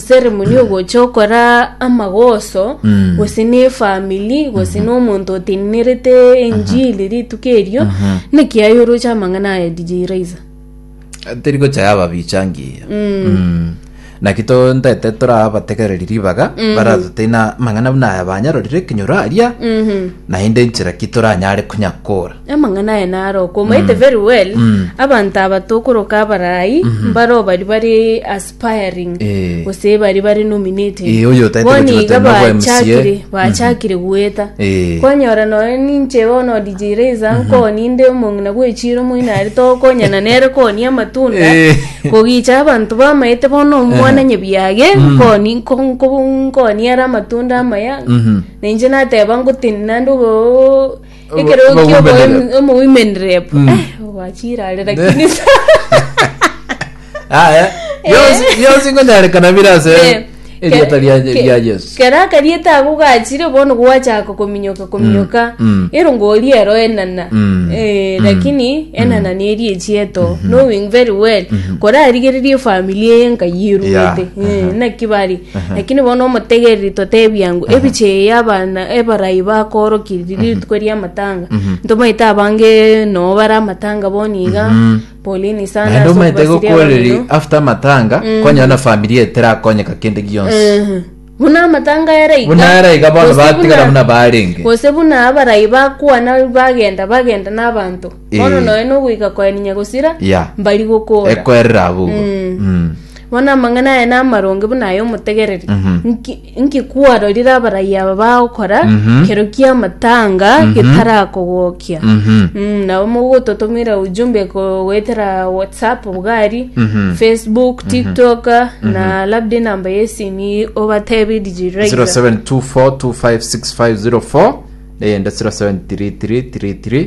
ceremony ogocha okora amagoso Mm. gose na efamili gose na omonto otenenerete enjiri rituko erio naki aye oroche amang'ana aya dj raiza teri gocha yaba bichangiya Mm. naki to ntete torabategereri ribaga baratoteina mang'ana buna aya banyarorire ekenyoro aria Mhm. naende nchera ki toranyare konyakora amang'ana aya narokwa omaete very well abanto aba tokoroka abarai mbaro bari bari as pairing Eh. gose baria bare nominated Eh, oyo otaete Bono gochia iga gotema kwa MCA. bachakire bachakire goeta Eh. kwanyora noyo ninche bono DJ Razor nkoni inde omong'ina gwechiro moino are tokonyana nere koni amatunda Eh. kogicha abanto bamaete bono omwana nyebiage nkoni nko- nko- nkoni are amatunda amaya Mhm. ninche nateba ngotenina ndobo Ekerogo Obogumenere. kiobogumenere po Mm. Eh, ogwachirare lakini sa Aya, bionsi bionsi nkonyarekana bire ase Eh, erieta ke- ria ke- ria Yesu. kera akarieta ako gachire bono gwachaka kominyoka kominyoka Mm, mm. ero ngori ero enana Mm, Eh, mm. lakini enana neri echieto knowing very well kora arigererie familia eye nkayi erugete Yeah, Eh, aha. naki bari Lakini bono omotegereri totebia ng'o ebicheye y'abana ebarai bakoorokirie riria rituko ri'amatanga ntomaete abange noo bare amatanga boni iga polini sana naende ase omaete okobasiria gokooreri abamino. after amatanga kwanyora na familia eterakonyeka kende gionsi Ehe. buna amatanga ere iga Buna ere iga bono gose batigara buna barenge. gose buna abarai bakwana bagenda bagenda n'abanto bono Eh. nonya nogoika koeninya gosira ya mbari gokora ekwerera abwo Mm. Mm. Bono amang'ana aye namaronge buna ay'omotegereri. Nki- Nki kwarorire abarayia aba bagokora kero ki'amatanga getarakogokia? Mm, nabo mogototomera ujumbe ko- goetera whatsapp bugari facebook tiktok na labda enamba yesimi obatebe rijirira 0724256504 neyende 073333